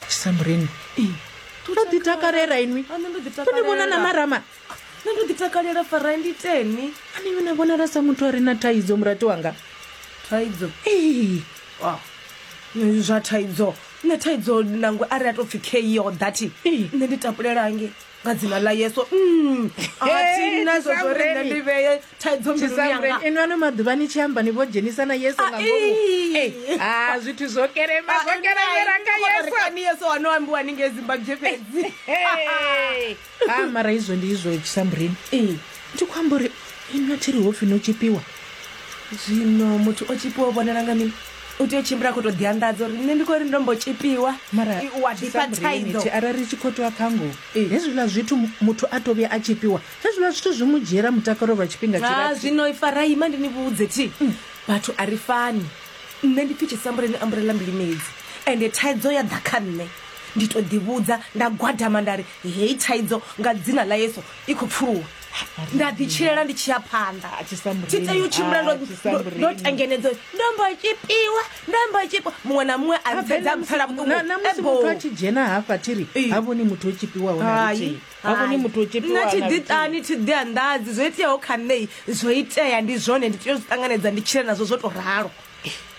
samureni to ḓi takalela inwi to ni vhona na marama nṋe ndo ḓi takalela fara ndi teni ani yona vhonala sa muthu a re na thaidzo murati wanga thaidzo ee ah, zwa thaidzo nṋe thaidzo nangwe a ri a tou pfhi keo dati nṋe ndi tapulelange nga dzina ḽa yesu mm. inwani maḓuvha ni tshi amba ni vho dzhenisa na yesu nga ngomuha zwithu zwo kerema zwo keremera kha yesu ano ambiwa ni nge zimbabwe fhedzi ha mara izwo ndi izwo chisamburini Ndi khou amba uri inwi a thi ri hopfi no tshipiwa zwino muthu o tshipiwa o vhonala nga mini u tea u tshimbila a khou tou ḓianḓadza uri nṋe ndi khou ri ndo mbo tshipiwa mara I- wa ḓifha Samburini, thaidzo thi arali ri tshi khou tea kha ngoho Ee. hezwiḽa zwithu mu- muthu a to vhuya a tshipiwa hezwiḽa zwithu zwi mu dzhiela mutakalo lwa tshifhinga Ah, tshilapfu zwino ifaraima ndi ni vhudze thi vhathu a ri fani nṋe ndi pfi tshisambuleni amburela mbili medzi ende thaidzo ya ḓa kha nṋe ndi to ḓivhudza nda gwadama nda ri heyi thaidzo nga dzina ḽa yesu i khou pfuluwa nda ḓi tshilela ndi tshi ya phanḓa A, tshisamburini. tshi tea u tshimbila ndo- A, tshisamburini. ndo- ndo tengenedzo ndo mbo tshipiwa ndo mbo tshipiwa muṅwe na muṅwe a ntsedzaa mpfela vhuṱungu Na- na musi Ebo. muthu a tshi dzhena hafha thiri Ee. ha vhoni muthu o tshipiwaho na Hai, luthihi ha vhoni hai. muthu o tshipiwaho nna na luthihi. thiḓiṱani thiḓi anḓadzi zwo iteaho kha nṋei zwo itea ndi zwone ndi tea u zwi ṱanganedza ndi tshile nazwo zwo to ralo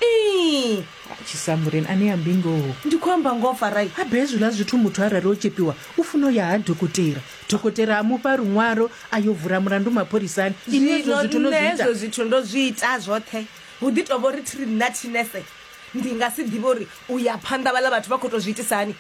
Ii, tshisambureni ane ya mbingoho ndi khou amba ngoho farai habe hezwiḽa zwithu muthu arali o tshepiwa u funa u ya ha dokotela dokotela a mufha luṅwalo a yo vula mulandu mapholisani ini hezwo zwithu no zwi ita zwithu ndo zwi ita zwoṱhe hu ḓi tovha uri thiri nna thinese ndi nga si ḓivhe uri u ya phanḓa vhaḽa vhathu vha khou tou zwi itisa hani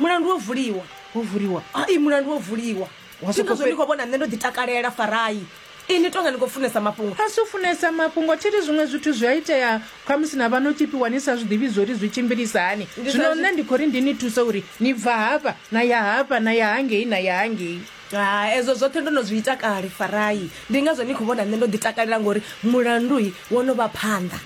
mulandu wo vuliwa wo vuliwa hai mulandu wo vuliwa zwinozwo ni khou vhona nṋe ndo ḓi takalela farai ini tonga ni khou funesa mafhungo a si u funesa mafhungo thi ri zwiṅwe zwithu zwi a itea khamusi na vha no tzhipiwa ni sa zwi ḓivhi zwo ri zwi tshimbilisa hani zwino nṋe ndi khou ri ndi ni thuse uri ni bva hafha na ya hafha na ya hangei na ya hangei ha ezwo zwoṱhe ndo no zwi ita kale farai ndi ngazwo ni khou vhona nṋe ndo ḓi takalela ngori mulandui wo no vha phanḓa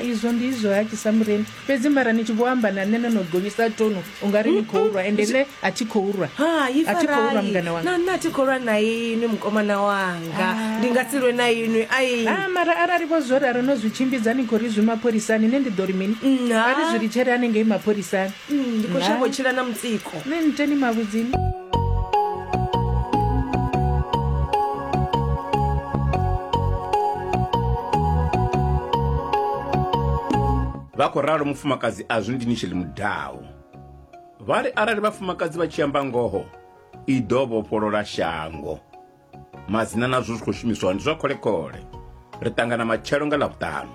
izwo ndi izwo ha tshisa mureni fhedzi mara ni tshi vho amba na nṋe no no gonyisa tonu u nga ri ni khou lwa ende nṋe a thi khou lwa hai a thi khou lwa farai mungana na wanga nṋe a thi khou lwa na inwi mukomana wanga ndi nga si lwe na inwi ai Ah, mara arali vho zwo ralo no zwi tshimbidza ni khou ri zwi mapholisani nṋe ndi ḓo ri mini Mm, ha. a ri zwi litshele hanengei mapholisani Mm, ndi khou shavha u tshila na mutsiko ni nte ni mavhudzini vha khou ralo mufumakadzi azwi ndi nitsheli mudawu vha ri arali vhafumakadzi vha tshi amba ngoho i ḓo vhofholola shango madzina nazwo zwi khou shumiswa ndi zwa kholekole ri ṱangana matshelo nga ḽavhuṱanu